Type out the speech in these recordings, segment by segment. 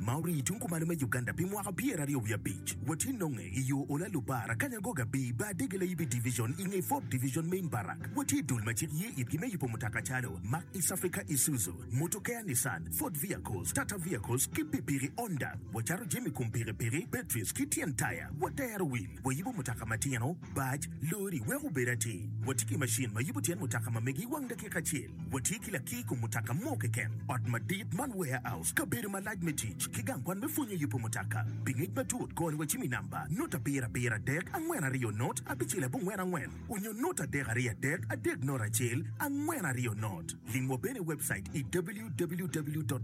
ma orii i tung kumalo me Uganda pi mwaka pyera aryo wiye abic, watye nonge i yo ola Lubar, Akanyangoga bii bar dege layibi division i nge Fort Division Main Barrack. Watye dul ma cik ye itgi me yubo mutoka calo, Mark East Africa Isuzu, Motokea Nissan, Ford Vehicles, Tata Vehicles ki pikipiki Honda. Wacato jami kom pikipiki, batteries ki tyen taya. Watero wil, wayubo mutoka matino, Bac, lori, wek obed atir. Watye ki macin ma yubo tyen mutoka ma mege i wang dakika acel. Watye ki lakir i kom mutoka mo keken. Ot madit man, warehouse, kabedo malac me tic, ki gang kwan me pwonyo yubo mutoka. Pi ngec matut, kor wacim i namba, not abiro abiro adek angwen aryo not abicel abongwen angwen, onyo not adek aryo adek adek not acel angwen aryo not. Limwa bene i webcait i www.maco.ug.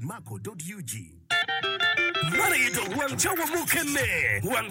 Man aye dok wang cawa mukene. Wang.